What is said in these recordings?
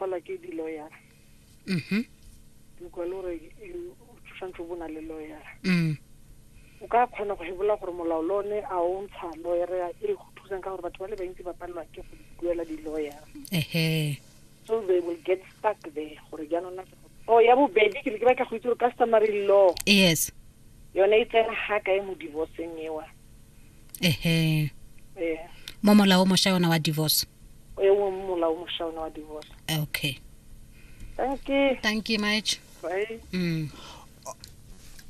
gola ke di-lawyer mhm dikwa le gore you- o tshwanetse o bona le lawyer mm o ka kgona go hebola gore molao le one a o ntsha lawyer e go thusang ka gore batho ba le bantsi ba palelwa ke go duela di-lawyer ehe so they will get stuck there gore jaanong na o ya bobedi ke ne ke batla go itse gore customary law yes yone e tsena ga kae mo divorceng ewa ehe ee mo molao mošwa yona wa divorce o ye mongwe molao mošwa ona wa divorce okay thank you thank you much bye mm.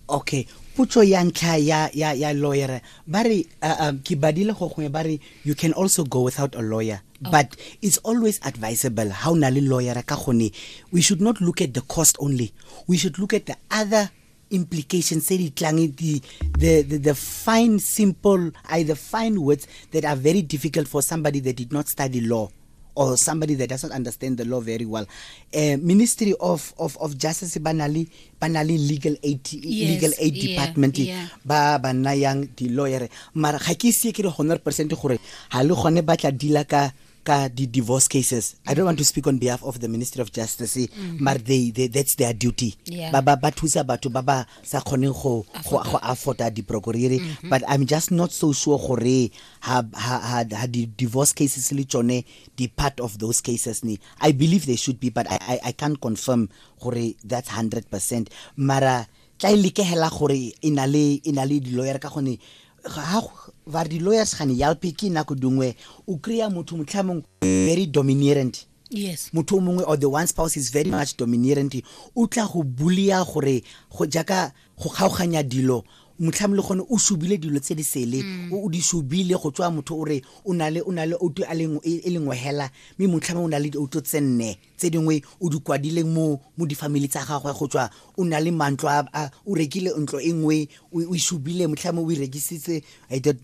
okay potso ya ntlha ya ya ya lawyer ba re uh, um, ke badile go gongwe ba re you can also go without a lawyer okay. but it's always advisable how na le lawyer ka gone we should not look at the cost only we should look at the other implications tse di tlang the, the, the, the fine simple I, the fine words that are very difficult for somebody that did not study law or somebody that doesn't understand the law very well uh, ministry of, of, of justice banali banali legal aid yes, legal aid yeah, department yeah. ba ba nayang di lawyer mara ga ke ise ke re 100% gore ha le gone ba tla dila ka ka di divorce cases i don't want to speak on behalf of the ministry of justice mm -hmm. but they, they that's their duty yeah. ba ba ba thusa batho ba ba sa khone go go go afforda di procureri mm -hmm. but i'm just not so sure gore ha ha ha, ha di divorce cases le tsone di part of those cases ni i believe they should be but i i, I can't confirm gore that's 100% mara tla e lekehela gore inale inale di lawyer ka gone ga ba re di-lawyers gane yalpe ke nako dingwe o kry-a motho motlhamong very dominerant yes motho o mongwe or the one spouse is very much dominerant o tla go bulia gore go jaaka go kgaoganya dilo motlhamo le gone o subile dilo tse di sele mm. o di subile go tswa motho o re o na le o na le outo e lengwe hela mme motlhamo o na le outo tse nne tse dingwe o di kwadileng mo mo difamily tsa gagwe go tswa o na le mantlo a o rekile ntlo e nngwe o ishubile motlhame o e rekisitse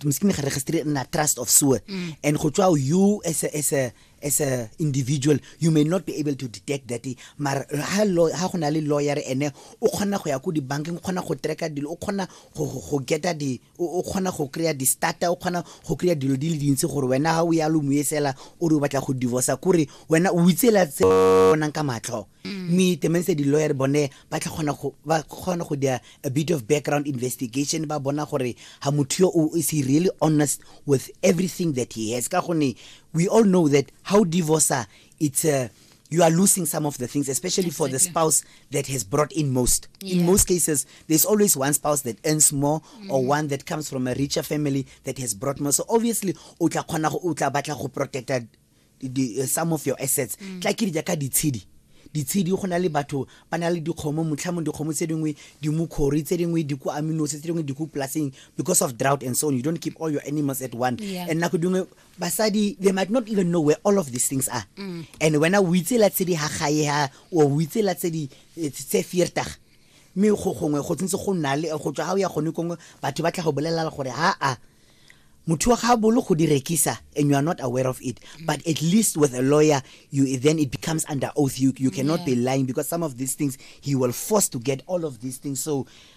mskine ga registre nna trust of sewer mm. and go tswa you as a, as a as a individual you may not be able to detect that mara ha ha go na le lawyer ene o kgona go ya ko dibankeng o kgona go tracka dilo o kgona go geta di o kgona go kry-a di-starter o kgona go kry-a dilo di le dintsi gore wena ga o ya lo moesela o re o batla go divorca kore wena o itsela tse bonang ka matlho mm. mme temense di-lawyer bone ba tla kgona go dia a bit of background investigation ba bona gore ga motho yo o is he really honest with everything that he has ka gonne we all know that how divorcer it's a uh, you are losing some of the things, especially exactly. for the spouse that has brought in most. Yeah. In most cases, there's always one spouse that earns more mm. or one that comes from a richer family that has brought more. So obviously, utla kona utla batla go protect uh, the, uh, some of your assets. Mm. Tla ke dijaka ditshedi. ditshedi go na le batho ba na le dikgomo motlhamong dikgomo tse dingwe dimokgori tse dingwe diku aminose tse dingwe diku plaseng because of drought and so on you don't keep all your animals at one yeah. and nako dingwe basadi they might not even know where all of these things are mm. and wena o itse la tse di ha gae ha o itse la tse di eh, tse fiertag mme go gongwe go tsentse go nna le go tswa ha o ya gone kongwe batho ba tla go bolelela gore ha a motho wa ga bolo go di rekisa and you are not aware of it but at least with a lawyer you then it becomes under oath you, you cannot yeah. be lying because some of these things he will force to get all of these things so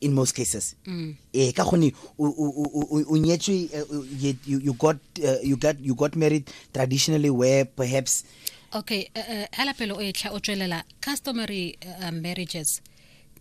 in most cases mm. eh ka gone o nyetswe eh, you, you got uh, you got you got married traditionally where perhaps okay uh, uh, hala pelo o etla o tswelela customary uh, marriages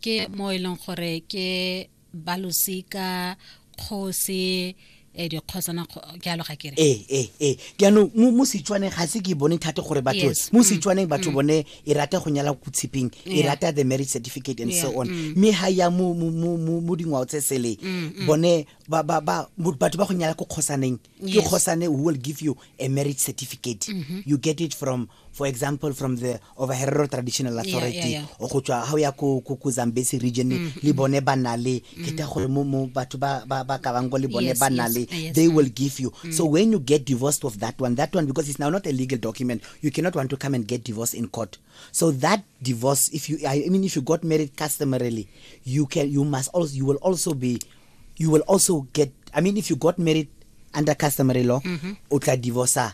ke mo e leng gore ke balosika kgosi eh, dikgosana kgo- jalo ga kere ee ee ee jaanong mo mo setswaneng ga se ke e bone thate gore batho Yes. mo setswaneng batho bone e rata go nyala ko tshipeng e Yeah. rata the marriage certificate and so Yeah, on mm. mme ga ya mo mo- mo- mo- mo dingwao tse sele bone ba- ba- ba- mo- batho ba go nyala ko kgosaneng ke Yes. kgosane who will give you a marriage certificate you get it from for example from the of herero traditional authority yeah, yeah. o go tswa ga o ya ko ko zambesi region mm -hmm. le bone ba na le mm. ke ta gore mo mo batho ba ba ba ka bang go le bone yes, ba na le yes, yes, they mm. will give you mm. so when you get divorced of that one that one because it's now not a legal document you cannot want to come and get divorced in court so that divorce if you i mean if you got married customarily you can you must also you will also be you will also get i mean if you got married under customary law mm -hmm. o tla divorcer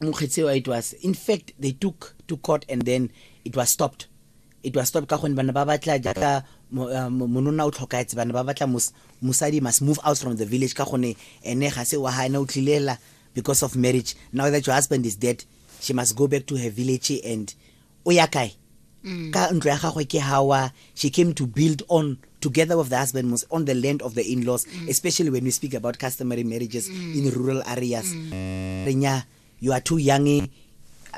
mokgetsewa it was in fact they took to court and then it was stopped it was stopped ka gonne bana ba batla jaaka uh, monona o tlhokaetse bana ba batla mosadi must move out from the village ka gonne ene ga se wa ga ene o tlhilela because of marriage now that your husband is dead she must go back to her village and o ya kae mm. ka ntlo ya gagwe ke hawa she came to build on together with the husband was on the land of the in-laws mm. especially when we speak about customary marriages mm. in rural areas mm. renya you are too young eh?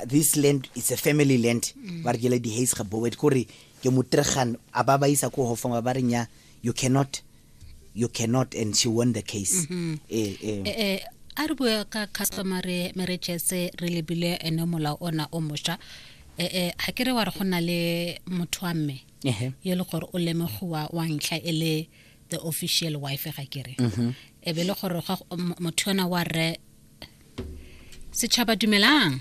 this land is a family land mm. ba re kele di-hays ga boet kore ke motregan a ba ba isa ko hofong ba ba renya you cannot you cannot and she won the case mm -hmm. eh, eh. Eh, eh, a re bua ka customary marriages re lebile ene molao ona o mošwa eh, eh, ga ke re wa re go na le motho wa mme yo le gore o lemogiwa wa ntlha e le the official wife ga kere mm -hmm. e be le gore motho yona wa rre setšhaba dumelang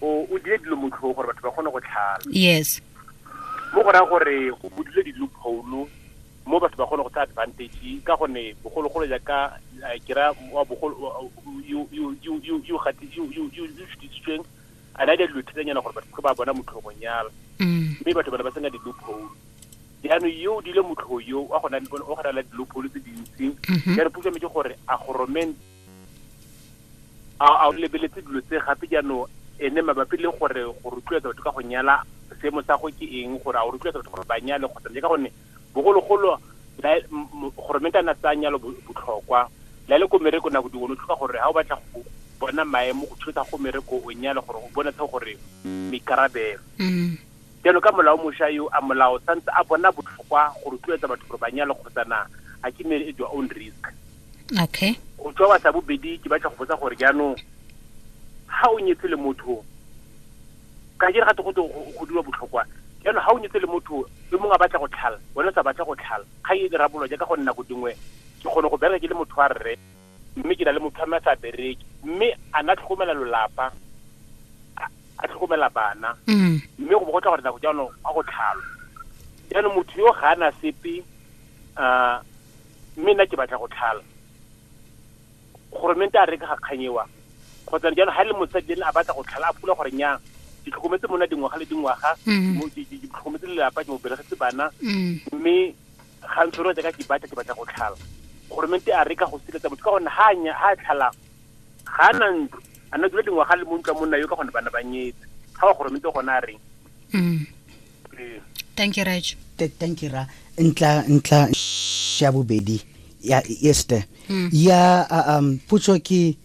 o o dire dilo motlhong gore batho ba kgone go tlhala yes mo go raya gore go budile di-loophole mo batho ba kgone go tsaya advantage ka gonne bogologolo jaaka eh, ke ra wa bogolo wa- wa- yo- yo- yo- yo- yo gati- yo- yo- yo- yo šutisitsweng a na di a dilo thetsanyana gore batho ba bona motlhogong yalo mm. mme batho bana ba sena di-loophole jaanong yo o dile motlho yo wa gona wa gona la di-loophole tse dintsi Mhm. jaanong puso metse gore a goromente a o lebeletse dilo tse gape jaanong ene mabapi le gore go rotloetsa batho ka go nyala seemo sa go ke eng gore a o rotloetsa batho gore ba nyale kgotsa le ka gonne bogologolo gore mente a na tsaya nyalo botlhokwa la le ko mereko nako dingwe o tlhoka gore ga o batla go bona maemo go thusa go mereko o nyale gore o bonatse gore maikarabelo jalo ka molao mošwa yo a molao santse a bona botlhokwa go rotloetsa batho gore ba nyale kgotsa na a ke ne e your own risk okay go tswa wa sa bobedi ke batla go botsa gore jaanong ha o nyetse le motho ka jere ga go go dira botlhokwa yana ha o nyetse le motho le mongwe a batla go tlhala wena o sa batla go tlhala ga e dira bolo jaaka go nna go dingwe ke kgone go bereka ke le motho wa rre mme ke na le motho a mme a sa bereke mme a na tlhokomela lolapa a tlhokomela bana mm. mme go bo go tla gore nako jaanong a go tlhalo jaanong motho yo ga ana sepe um mme nna ke batla go tlhala goromente a reka ga kganyewa kgotsa jalo ga e le mosadi ene a batla go tlhala a pula gore nyang ke tlhokometse mona dingwaga le dingwaga mm. ke tlhokometse lelapa ke mo belegetse bana mm. mme ga ntshoro jaaka ke batla ke batla go tlhala goromente a reka go siletsa motho ka gonne ga a tlhalang ga a na ntlo a na dula dingwaga le mo ntlo mo nna yo ka gonne bana ba nyetse ga wa goromente gone a reng mm. thank you raj thank you ra ntla ntla ya bobedi ya este hmm. ya um putso ke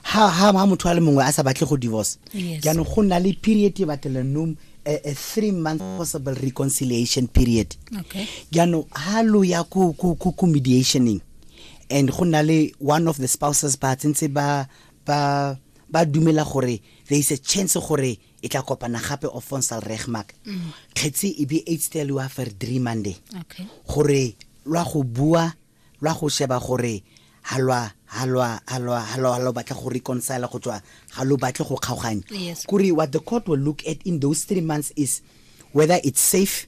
ha ha ma motho a le mongwe a sa batle go divorce jaanong go na le period e batlela nom a, a three month possible reconciliation period okay jaanong ha lo ya ku ku ku mediationing and go na le one of the spouses ba tsentse ba ba ba dumela gore there is a chance gore e tla kopana gape o fonsal regmak mm. kgetsi e be h tse lwa fer three monday gore lwa go bua lwa go sheba gore ha lwa ha lwa ha lwa ha lwa lo batla go reconcile go tswa ga lo batle go kgaoganya kuri what the court will look at in those three months is whether it's safe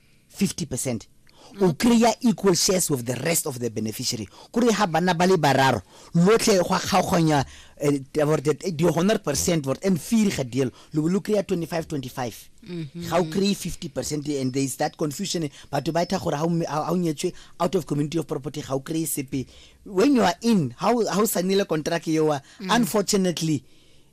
50 percent o kry-a equal shares with the rest of the beneficiary kore ga bana ba le bararo lotlhe go kgaoganya eh, eh, di hundred percent vort and fee ga deal lo lo kry-a 25 25 mm-hmm. ga o kry-e 50 percent and there is that confusion batho ba etha gore ga o nyetswe out of community of property ga o kry-e sepe when you are in ga o sanile contract eoa mm. unfortunately mm.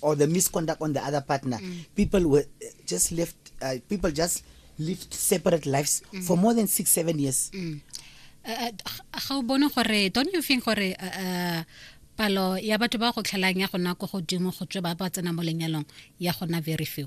or the misconduct on the other partner mm. people were uh, just left uh, people just lived separate lives mm. for more than 6 7 years mm. uh, uh, bone gore don't you think gore uh, uh, palo ya batho ba go tlhelang ya gona ko godimo go tswe ba ba tsena mo lenyalong ya gona very few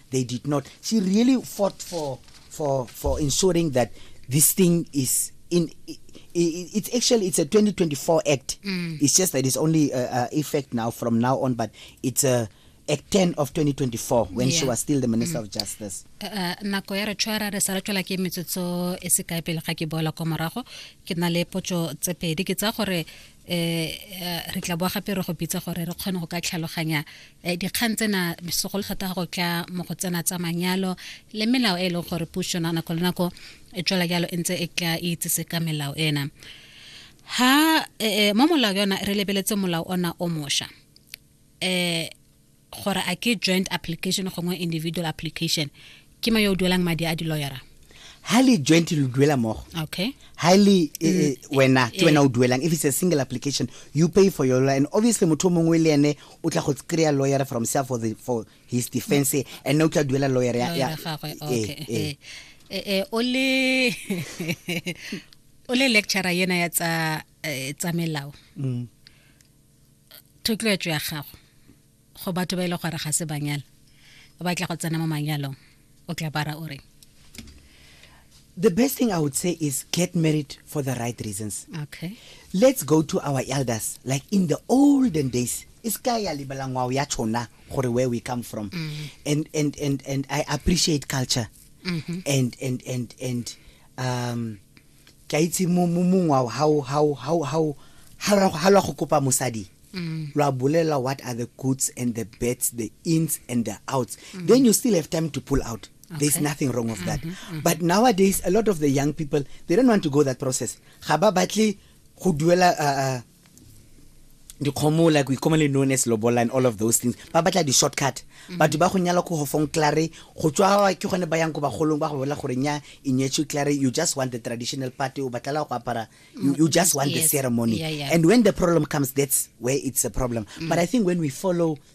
They did not. She really fought for for for ensuring that this thing is in it's actually it's a 2024 act mm. it's just that it's only uh, uh, effect now from now on but it's a act 10 of 2024 when yeah. she was still the minister mm. of justice uh, uh, nako ya re tshwara re sa re tswela ke metsotso e se kae pele ga ke boela kwa morago ke na le potso tse pedi ke tsa gore eh, eh re tla boa gape re go bitsa gore re kgone go ka tlhaloganya eh, dikgang tsena segolo thata go tla mo go tsena tsa manyalo le melao e e leng gore puso na nako le nako e tswela jalo e ntse e tla e itsese ka melao ena ha eh, eh mo molao yona re lebeletse molao ona o mosha eh gore a ke joint application gongwe individual application ke ma yo o duelang madi a di-lawyera ha le joint lo duela mogo okay ha le eh, mm. eh, wena ke wena o duelang if it's a single application you pay for your lawyer and obviously motho mongwe le ene o tla go kry-a lawyer from self for, the, for his defense mm. and o tla duela lawyer ya eh, okay. eh, o le o le lecturer yena ya tsa tsa melao mm. thotloetso ya gago go batho ba ile e gore ga se banyala o batla go tsena mo manyalong o tla bara o reng the best thing I would say is get married for the right reasons. Okay. Let's go to our elders, like in the olden days. Iskaya libalangwa yachona gore where we come from. Mm -hmm. And and and and I appreciate culture. Mm -hmm. And and and and um ke a itse mo mo mongwe wa ha o- ha o- ha o- ha o- ha lwa- ha lwa go kopa mosadi lwa bolela what are the goods and the bets the ins and the outs then you still have time to pull out there's Okay. nothing wrong of that but nowadays a lot of the young people they don't want to go that process ga ba batle go duela uh, uh, dikgomo like we commonly known as lobola and all of those things ba batla di-shortcut mm-hmm. batho ba go nyala ko gofong clare go tswa ke gone ba yang ko bagolong ba go bolela gore nya e nyetswe clare you just want the traditional party o batlela go apara you, you just want yes. the ceremony yeah, yeah. and when the problem comes that's where it's a problem mm. but i think when we follow